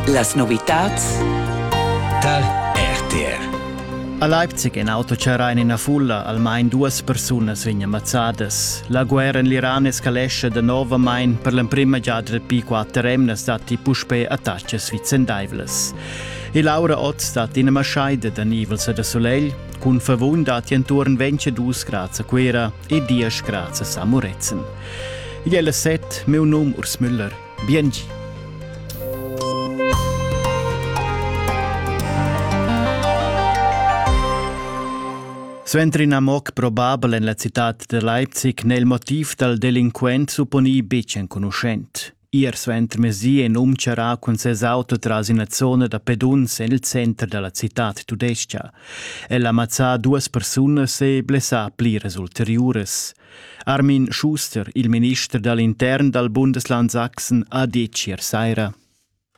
Las novitads dal RTR. A Leipzig in auto charrà en ina fulla, almain duas persunas vegnan mazzadas. La guerra en l'Iran escalesce danovamain per l'emprima giada dapi quatter emnas datti puspè attacas vicendaivlas. E Laura Ott stat ina maschaida da nivels e da solegl, cun favun datti enturn 22 grads a Cuera e 10 grads a Samuretzen. Igl è la set, meu num Urs Müller. Biengi. Suenter in amok probabel en la citad da Leipzig n'è il motiv dal delinquent supponì betg enconuschent. Ir suentermezdi en um charrà cun ses auto tras ina zona da peduns en il center da la citad tudestga. El ha mazzà duas persunas e blessà pliras ulteriuras. Armin Schuster, il minister dall'intern dal Bundesland Sachsen, ha detg ier saira.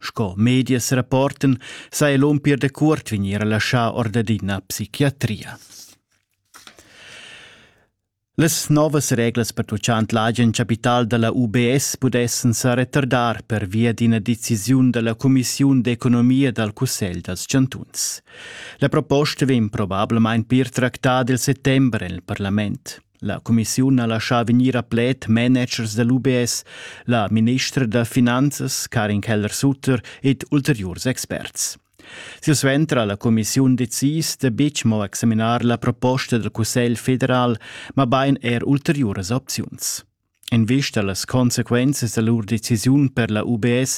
Sco medias rapportan sa el um pir da cuort vegnir laschà or dad ina psichiatria. Las novas reglas pertuccant l'agen capital da la UBS pudessan sa retardar per via d'ina decisiun da la Cumissiun d'economia dal Cussegl dals chantuns. La proposta vegn probablamain pir tractada il settembre en il parlament. La cumissiun ha laschà vegnir a pled managers da l'UBS, la ministra da finanzas Karin Keller-Sutter ed ulteriurs experts. Silsuenter ha la cumissiun decis da betg mo examinar la proposta dal Cussegl federal, mabain er ulteriuras opziuns. En vista a las consequenzas da lur decisiun per la UBS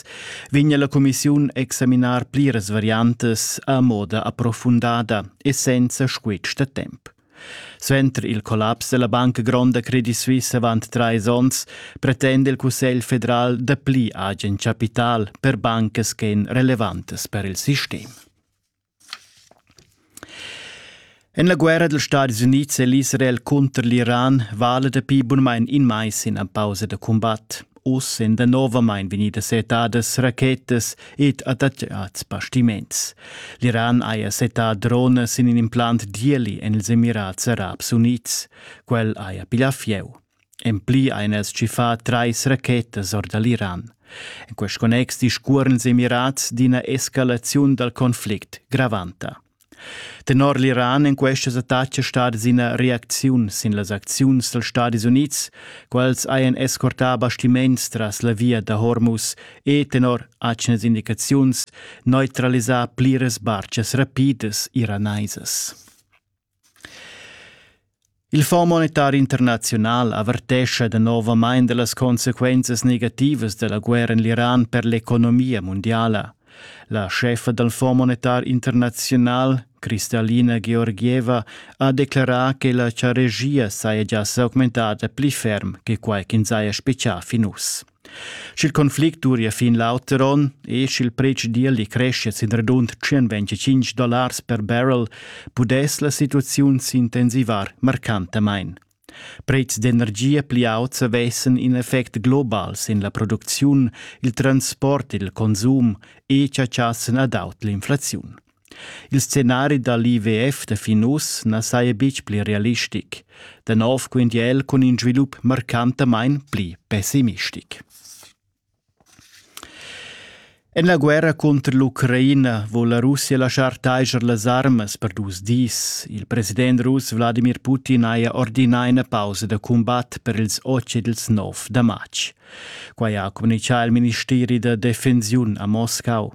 vegna la cumissiun examinar pliras variantas a moda approfundada e senza squitsch da temp. Suenter il collaps della Banca Gronda Credit Suisse avant trais onns pretende il Cussegl federal dapli agen capital per bancas ch'en relevantes per il sistem. En la guerra dals Stadis Unids è l'Israel cunter l'Iran vala dapi bunmain in mais ina pausa da cumbat. Uss èn danovamain vegnidas settadas rachetas ed attaccads bastiments. L'Iran haja settà dronas in in implant d'ieli en ils Emirats Arabs Unids. Quel haja piglià fieu. En pli ein els tschiffà trais rachetas or da l'Iran. En quest connex discuorens emirats d'ina escalaziun dal conflict gravanta. Tenor l'Iran èn questas attacas stadas ina reacziun sin las acziuns dals Stadis Unids, quels hajan escortà bastiments tras la via da Hormuz e, tenor atgnas indicaziuns, neutralisà pliras bartgas rapidas iranaisas. Il Fonds monetar internaziunal avertescha danovamain da las consequenzas negativas da la guerra en l'Iran per l'economia mundiala. La scheffa dal Fonds monetar internaziunal, Kristalina Georgieva, ha declarà che la charegia saja gia s'augmentada pli ferm che quai ch'ins haja spiccà fin uss. Sch'il conflict duria fin l'auter onn e sch'il pretsch d'ieli creschia sin radund 125 dollars per barrel, pudess la situaziun s'intensivar marcantamain. Pretschs d'energia pli auts avessan in effect global sin la producziun, il transport, il consum e chatschassan ad aut l'inflaziun. Il scenari da l'IWF da fin uss na saja betg pli realistic, da nov quintia el cun in svilup marcantamain pli pessimistic. En la guerra cunter l'Ucraina vul la Russia laschar taiger las armas per dus dis. Il president russ Wladimir Putin haja ordinà ina pausa da cumbat per ils otg ed ils nov da matg. Quai ha communitgà il ministeri da defensiun a Moscau.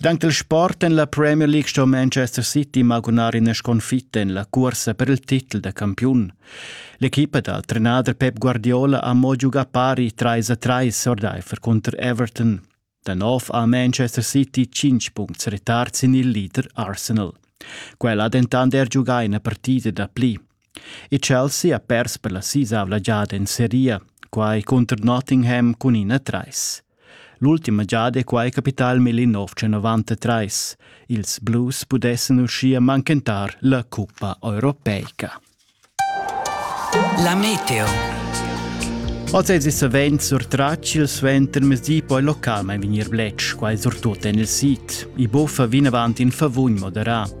Dank il sport en la Premier League sto Manchester City magunar ina sconfitta en la cuorsa per il titel da campiun. L'equipa dal trenader Pep Guardiola ha mo giugà pari 3 a 3 ordaifer cunter Everton. Da nov ha Manchester City 5 puncts retard sin il leader Arsenal. Quel ha dentant er giugà ina partida da pli. e Chelsea ha pers per la sisavla giada en seria, quai cunter Nottingham cun ina trais. L'ultima giada è quai capità il 1993. Ils Blues pudessan uschia manchentar la cuppa europeica. La meteo. Oz è savens surtratg il suentermezdi poi localmain vegnir bletsch, quai surtut en il sid. I buffa vinavant in favugn moderà.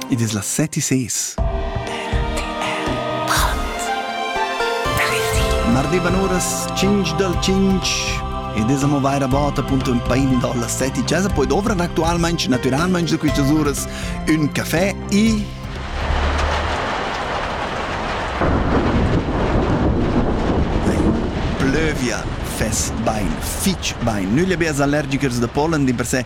Id es las set e ses. M'arrivan uras 5 dal 5 ed es amo vaira bod appunto ün pain in dalla 7 e chesa, poi dovràn actualmaing, natüralmaing da quistas uras ün cafè e plövia fess bain, fich bain. Nügl e bers allergicers da pollen dimpersè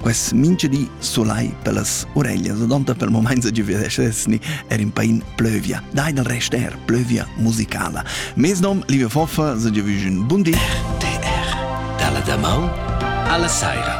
Quest mingedi solai per las ureglias ad onta per moments a giuvedesni er in pain plövia. Dai del rest er plövia musicala. Mes nom, liebe Foffa, se giovügen bundi. RTR, dalla damaun alla saira.